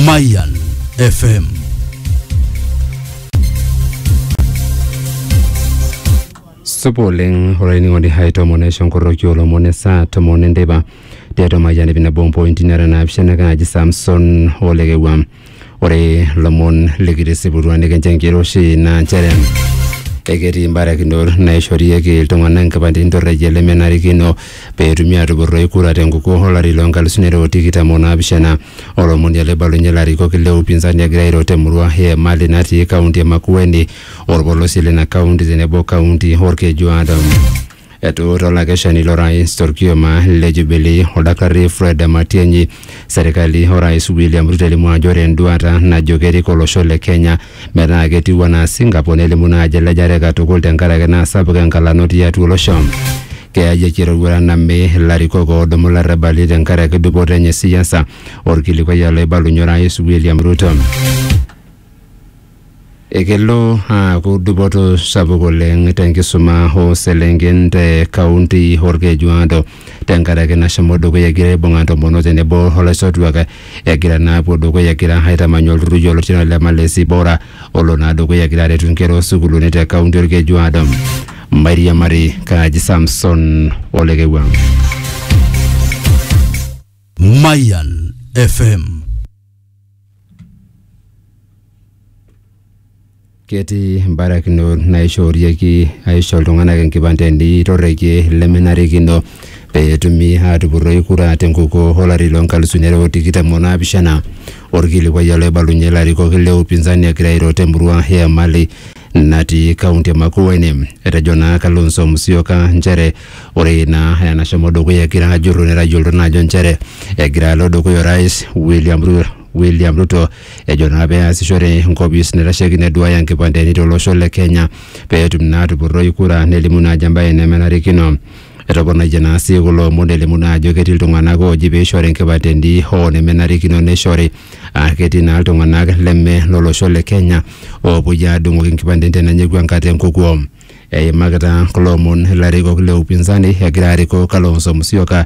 Mayan FM. supa oleng olainining'oni hai tomon aisho nkorroki olomon esaa tomon enteipa tiatua mayian ip nabo mpointi nara naapishana kaaji samson olekewua Ore lomon likitisiputua nikincho enkiroshi naa nchere eketii imbarakinot naishorieki iltung'anak nkipandeni torrekie lemenarikino pee etumi aatupurroi kura tenkukuo olari loo nkalusuni are o tikitam o naapishana. Olomoni ele oibalunye ilarikok le upinzani egira airo te murua e Emali natii kaunti e Makueni, olpolosie lina kaunti tenebo kaunti Olkejuado. Etuuta olakeshani lorais torkioma le Jubilee oldakitari Fred Matiang'i serikali orais William Ruto elimu ajo ore enduata najo kerik olosho le Kenya metaa ketiu anaa Singapore nelimu naa ajo elejare katukul tenkaraki naa sapuk enkalano tiatua olosho. Keyayieki eroruata name ilarikok oodumu larrabali tenkaraki dupoto enye e siasa, olkilikuai oloibalunye orais William Ruto. Ekelo aaku dupoto sapuk oleng te nkisuma oo selenken te kaunti Olkejuado tenkaraki nashomo dukuya egira aibung'a ntomonok tenebo o laisotuak egira naa apuo dukuya egira aitamany olturrur yioloti anaa ole Malezi Bora olo naa dukuya egira aretu nkera oo sukuuluni te kaunti Olkejuado. Mairiamari kaaji Samson ole Kewuang. Mayan FM ketii mbarakinot naishoorieki aisho iltung'anak enkipandeni torrekie lemenarikino pee etumi aatupurroi kura tenkukuo olari loo nkalusuni are o tikitam o naapishana. Orkilikuai oloibalunye ilarikok le upinzani egira airo temurua e Emali natii kaunti e Makueni. Etejo naa Kalonzo Musyoka nchere ore naa enashomo dukuya egira ajurru netayiolito naa ajo nchere egira alo dukuya orais William Ruto William Ruto ejo naa pee easishore enkopis naitasheiki neduaya inkipandeni tolosho le Kenya pee etum naa atupurroi kura nelimu naa ajo embae nemenarikino. Etoponayie naa sii kulo omon elimu naa ajo ketii iltung'anak ooji peishori enkipandeni hoo nemenarikino neishori. Aa ketii naa iltung'anak leme lolosho le Kenya oopuoi aadung'oki nkipandeni tenenyiku enkata enkukuo. Eimakita kulo omon ilarikok le upinzani egira arikoo Kalonzo Musyoka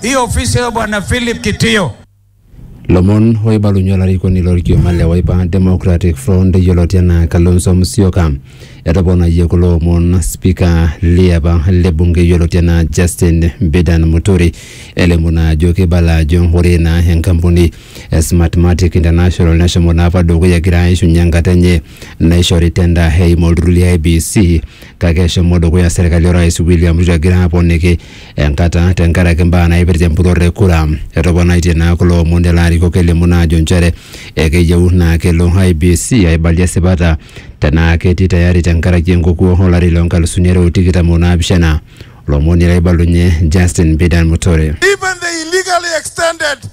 hii ofisi ya bwana Philip Kitio. Lomon oibalunye olarikoni lorkioma le Wiper Democratic Front yioloti anaa Kalonzo Musyoka etoponayie kulo omon spika liapa le bunge yioloti anaa Justin Bidan Muturi elimu naa ajo keibala ajo ore naa enkampuni e Smartmatic International neshomo naa apa dukuya egira aishunye enkata enye naishori tenda eimu olturrur le IEBC kake eshomo dukuya serkali orais William Ruto egira aponiki enkata tenkaraki mbaa naipirta empurrore e kura. Etoponaitie naa kulo omon lelo arikok elimu naa ajo nchere ekeyieu naa kelo IEBC aibalie esipata tenaa ketii tayari tenkaraki enkukuo olari loo nkalusuni are o tikitam o naapishana. Lomoni laibalunye Justin Bidan Muturi. Even they illegally extended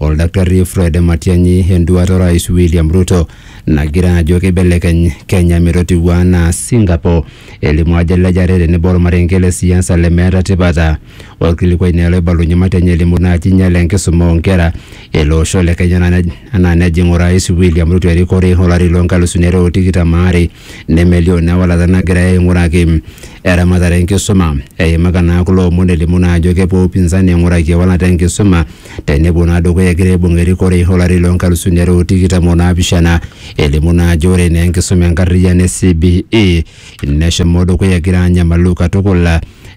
Oldakitari Fred Matiang'i enduata Orais William Ruto nagira ajo keibelekeny Kenya metotiu anaa Singapore. Elimu ajo elejare tenebo olmarenke le siasa lemeeta tipata. Olkilikuai naa ele oibalunye Matiang'i elimu naaji einyale enkisuma oo nkera ele osho le Kenya anaa nejing Orais William Ruto erikore olari loo nkalusuni are o tikitam aare nemelioo naa ewalata nagirai aing'uraki eramatare e nkisuma. Eimaka naa kulo omon elimu naa ajo kepuo upinzani aing'uraki ewalata e nkisuma tenepuo naa dukuya egira aibung erikore olari loo nkalusuni are o tikitam o naapishana elimu naa ajo ore naa enkisuma enkarriyiano e CBE neshomo dukuya egira anyamalu katukul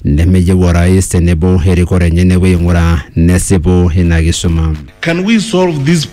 nemeyieu orais tenebo erikore enye nepuo aing'uraa nesipu ina kisuma. Can we solve this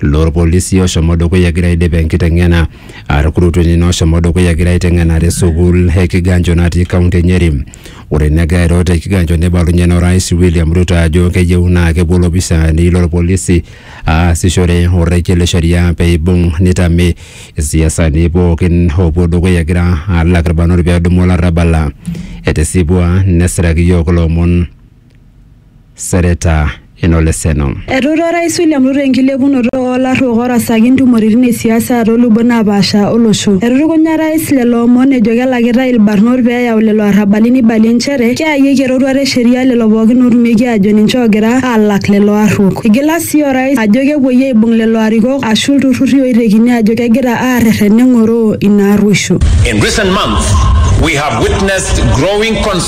loorpolisi oshomo dukuya egira aidip enkiteng'ena arkurutueni nooshomo dukuya egira aiteng'ena te sukuul e Kiganjo natii kaunti e Nyeri. Ore negira airo te Kiganjo neibalunyie naa Orais William Ruto ajo keyieu naa kepuo ilopisaani lorpolisi aasishore orrekie le sheria peibung neitame isiasani pookin oopuo dukuya egira alak irbanot peedumu olarrabal. Etisipua nesiraki iyiook ilo omon Sereta Enoleseno. Etuuta Orais William Ruto enkilepunoto oo larruok orasaki ntumoritin e siasa too lubot naapaasha olosho. Etutukunya Orais lelo omon ejo kelakitai ilbarnot pee eyau lelo arrabali neibalie nchere keyayieki eroruata e sheria lelo pookin ootumieki aajo ninche oogira aalak lelo arruok. Eigila sii Orais ajo kepuoi aaibung lelo arikok aashu ilturrurri ooitekini aajo kegira aarrerren neng'oroo ina arruosho. In recent months, we have witnessed growing concerns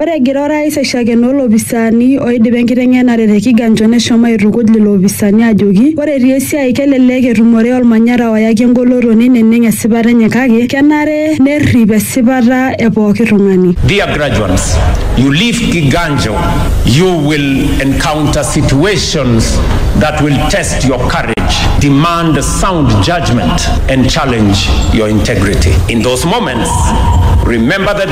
Ore egira orais aishakenoo lopisaani oidipa enkiteng'enare te Kiganjo neshomo aitukuj lelo opisaani ajoki ore etii esiai kelelek etumore olmanyara oyaki engoloto neineneng esipata enye kake kenare nerrip esipata e pooki tung'ani. Dear graduands, you leave Kiganjo you will encounter situations that will test your courage, demand sound judgement and challenge your integrity. In those moments remember the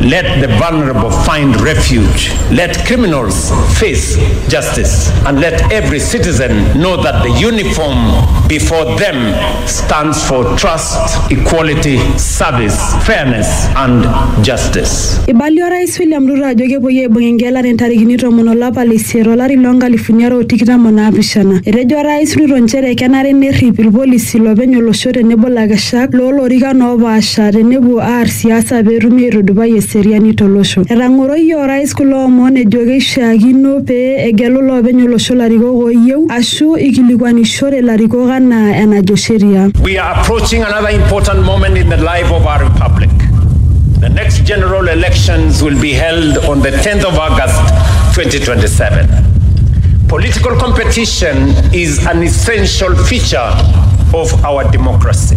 Let the vulnerable find refuge. Let criminals face justice. And let every citizen know that the uniform before them stands for trust, equality, service, fairness, and justice. Eibalie Orais William Ruto ajo kepuoi aibung engelare ntarikini tomon olapa le isiet olari loo nkalifuni are o tikitam o naapishana. Etejo Orais Ruto nchere kenare nerrip ilpolisi lopeny olosho tenebo lakeshak loo lorikan oopaasha tenepuo aar siasa pee etumi aitudupai eseriani tolosho. Etang'oroyie Orais kulo omon ejo keishiakino pee egelu loopeny olosho larikok ooyieu ashu eikilikuanishore ilarikok anaa enajo sheria. We are approaching another important moment in the life of our republic. The next general elections will be held on the 10th of August 2027. Political competition is an essential feature of our democracy.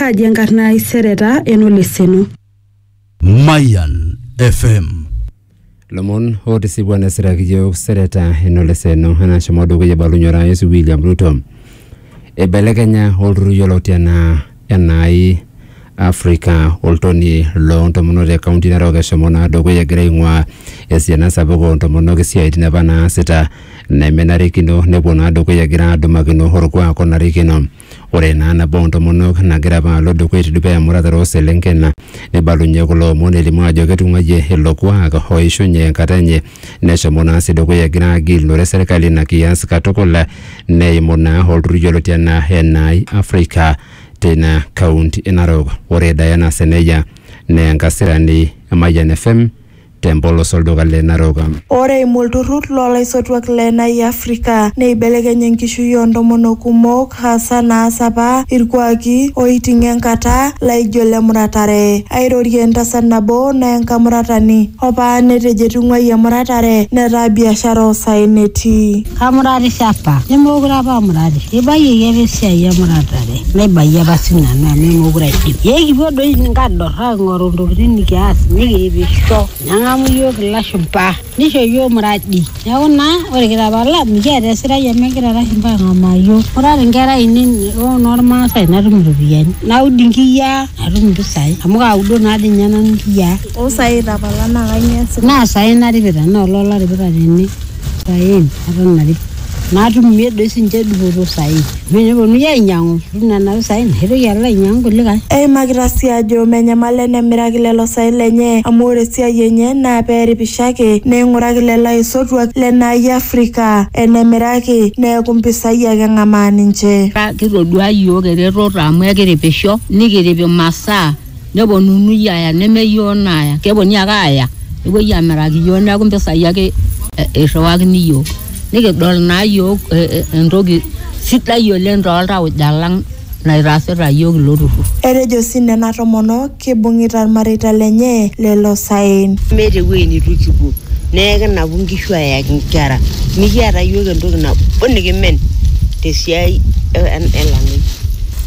Kaaji enkarna ai sereta enoleseno. Mayan FM. lomon otisipua nesiraki yiok sereta enoleseno enashomo dukuya ebalunye orais William Ruto eibelekenya olturrur yioloti enaa enai Africa oltonie loo ntomonok te kaunti Narok eshomo naa dukuya egira aing'uaa esiana sapuk oo ntomonok isiaitin apa naasita nemenarikino nepuo naa dukuya egira adumakino orkuak onarikino. Ore naa nabo oo ntomonok nagira apa alo dukuya etii dukuya emuratare oo selenken neibalunye kulo omon elimu ajo ketung'uayie ilo kuak oishunye enkata enye neshomo naa sii dukuya egira agilunore serkali ina kias katukul neimu naa olturrur yioloti enaa NI Africa teina county e Narok. Ore Diana Seneya naa enkasirani e Mayian FM te mpolos olduka le Narok. Ore eimu olturrur loo laisotuak le Nai Afrika neibelekeny enkishui oo ntomonok kumok hasa naas apa ilkuaki ooiting'o enkata laijo le muratare. Airorie entasat nabo naa enkamuratani opa netejo etung'uayie emuratare netaa biashara oo saen etii. Kamuratisho apa nemeekure apa amuratisho. Eibayioki apa esiai emuratare naibayie apa sii nanu amu meekure aidim. Ee kipuo doi nkador. Aing'oru ntokitin nikias nikiipisho neng'amu iyiook ilashumpa nisho iyiook muradi neeku naa ore kitapala mikiata esirai amu egira ilashumpa aang'amaa iyiook. Ore ata inkera ainei oo inormaasai natum iropiyiani naud inkiyia natum impisai amu kaudo naa dii ninye nanu inkiyia. Ooh saai itapala naa kainyioo iasita? Naa saai naripita naa olee olaripita tene. saen eton are naatumie doi sinche dupoto saen amu eneponunui ainyiang'u itum nena pisai naitoki alo ainyiang'u kulikae Eimakita sii ajo menyamal enemiraki lelo saen lenye amu ore esiai enye naa pee eripisho ake neing'uraki lelo aisotuak lena ai e Afrika enemiraki neeku mpisai ake eng'amaa ninche. Kitoduaa iyiook eretoto amu ekiripisho nikirip imasaa neponunui aaya nemeyioo naaya keponunui ake aaya nepuoi amiraki iyiook neeku impisai ake eh, irriwakini iyiook nikidol naa iyiook eh, eh, entoki sidai oleng toltauja lang naitaasita iyiook ilo turrur Etejo sii nena tomonok kibung'ita ilmareita lenye lelo saen. meeta ewueji nitu kipuo neeku kinapu nkishu ayaki nkera mikiata iyiook entoki nabo nikimen tesiai e- e- elamei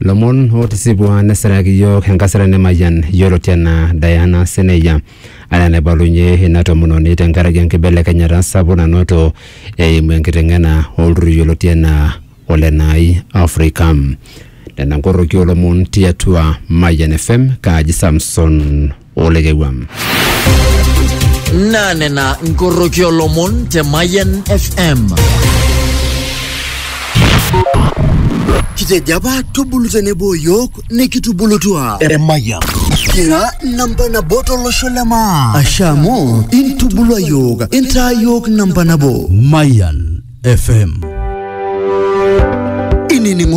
lomon otisipua nesiraki yiok enkasirani Mayian yioloti anaa Diana Seneya anaa enaibalunye ina tomononi tenkaraki enkibelekenyata sapuk nanoto eimu enkiteng'ena olturrur yioloti anaa Ole Nai Afrika. Nena nkoroki olomon tiatua Mayian FM kaaji Samson olekewuam. naa nena nkoroki olomon te Mayian FM. Kitejo apa tubulu tenebo yiok nikitubulutua. Emayian. Kira namba nabo tolosho le maa. Ashe amu intubulua yiok, intaa yiok namba nabo. Mayan FM. Inining'o